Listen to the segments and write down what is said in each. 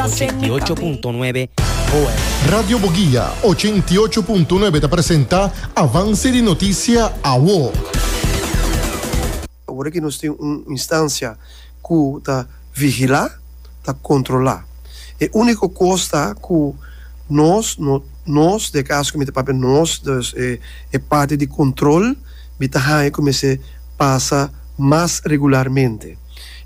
ochenta i ocho punto nuebe Boer. Radio Boguia ochenta i ocho punto nuebe ta presenta Avance di Noticia Awo. Awor aki nos tin un instancia cu ta vigila, ta controla. E unico cos ta cu nos, nos, den e caso cu mi ta papia nos, dus e parti di control, mi ta haya cu mester pasa mas regularmente.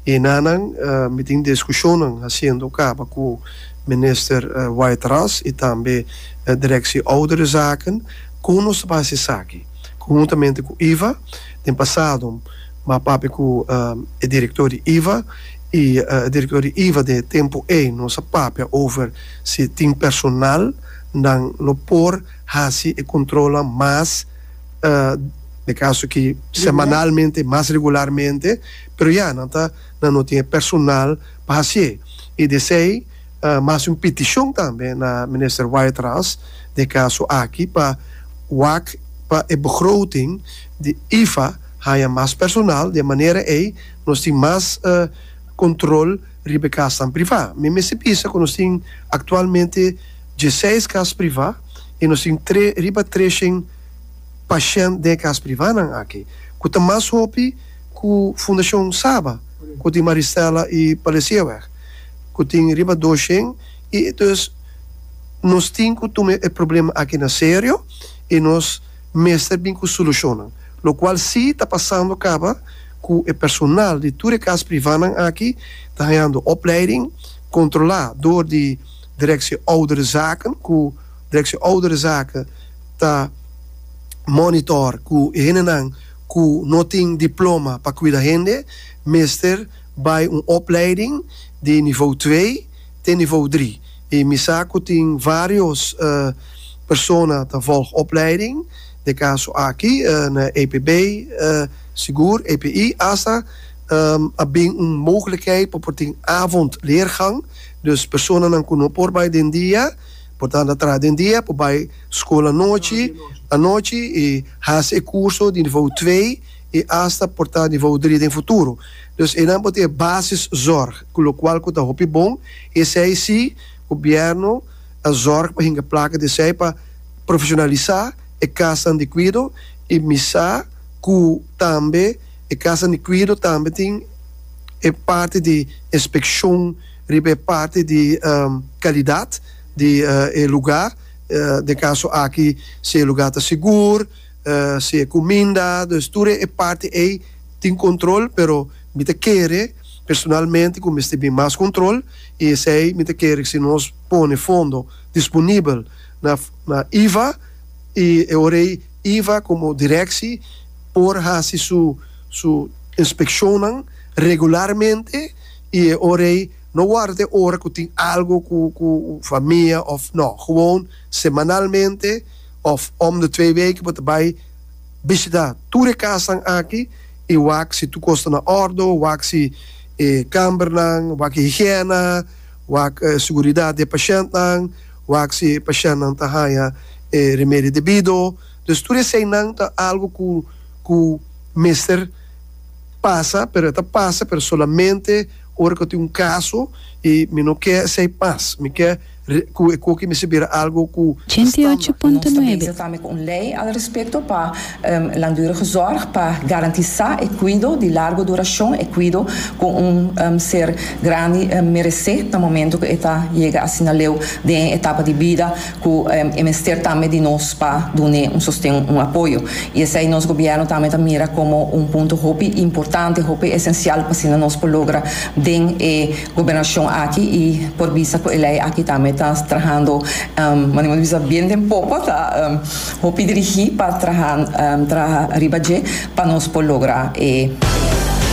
E nanan mi tin diskushonnan hasiendo kaba ku minister White Ras i tambe direkshi ouderenzaken kon nos ta por hasi esaki. Konhuntamente ku iva den pasado mi a papia ku e direktor di iva i e direktor di iva den e tempu ei nos a papia over si tin personal nan lo por hasi e kontrolnan mas dekaso aki semanalmente mas regularmente. Pero ya, nan ta nan no tin e personal pa haci'e. Y desey mi a haci un piticion tambe na Minister Wyatt Ras den e caso aki pa wak pa e begroting di IFA haya mas personal. Di e manera ey nos tin mas control riba e casnan priva. Mi mester bisa cu nos tin actualmente dieseis cas priva y nos tin tre riba trecen pashent den e cas privanan aki cu ta mas hopi. Ku Fundashon Saba ku tin Maristela i Palesieweg ku tin riba dos shen i entonces nos tin ku tuma e problema aki na serio i nos mester bin ku solushonnan lokual si ta pasando kaba ku e personal di tur e kas privanan aki ta hañando opleiding kontrolá dor di Direksie Ouderenzaken ku Direksie Ouderenzaken ta monitor ku e hendenan ku no tin diploma pa kuida hende mester bai un opleiding di nivou twee te nivou dri. I mi sa ku tin vários persona ta vòlg opleiding den kaso aki na EPB, sigur EPI asta a bin un mogelijkheid pa por tin avondleergang. Dus personanan ku no por bai den dia por tanto a traha den dia por bai skol anochi anochi i. Hasi e kurso di nivou twee i asta por ta nivou drie den futuro. Dus einan por tin e basis zorg ku lokual ku ta hopi bon i esei si gobièrnu a zorg pa hinga plaka di esei pa profeshonalisá e kasnan di kuido i misa ku tambe e kasnan di kuido tambe tin e parti di inspekshon riba e parti di kalidat di e lugá. Den e kaso aki si e lugá ta sigur, si e kuminda, dus tur e parti ei tin kontrol, pero mi ta kere personalmente ku mester bin mas kontrol i esei mi ta kere si nos pone fondo disponibel na iva i e ora ei iva komo direkshi por hasi su su inspekshonnan regularmente i e ora ei No warda ta e ora ku tin algu ku ku famia òf nò. Gewoon semanalmente òf om de twee weken bo ta bai bishitá tur e kasnan aki i wak si tur kos ta na òrdu, wak si e kambernan, wak higiena, wak e seguridat di e pashèntnan, wak si e pashèntnan ta haña e remedio debido. Dus tur eseinan ta algu ku ku mester. pasa pero e ta pasa pero solamente ora cu tin un caso y mi no ke esey mas mi ke cu e coki mester bira algo cu ta standaard. Nos ta bezig tambe cu un ley al respecto pa langdurige zorg pa garantisa e cuido di largo duracion, e cuido cu un ser grandi merece na momento cu e ta yega asina leu den e etapa di bida. Cu e mester tambe di nos pa dun'e un sosten, un apoyo. Y esey nos Gobierno tambe ta mira como un punto hopi importante, hopi esencial p'asina nos por logra den e Gobernacion aki y por bisa cu e ley aki tambe ta trahando, manera nos bisa bien den poco, ta hopi dirigi pa traha, traha riba dje pa nos por logra e.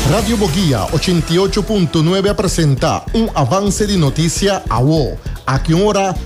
Radio Boguia ochenta i ocho punto nuebe a presenta un avance di noticia awo. Aki un ora.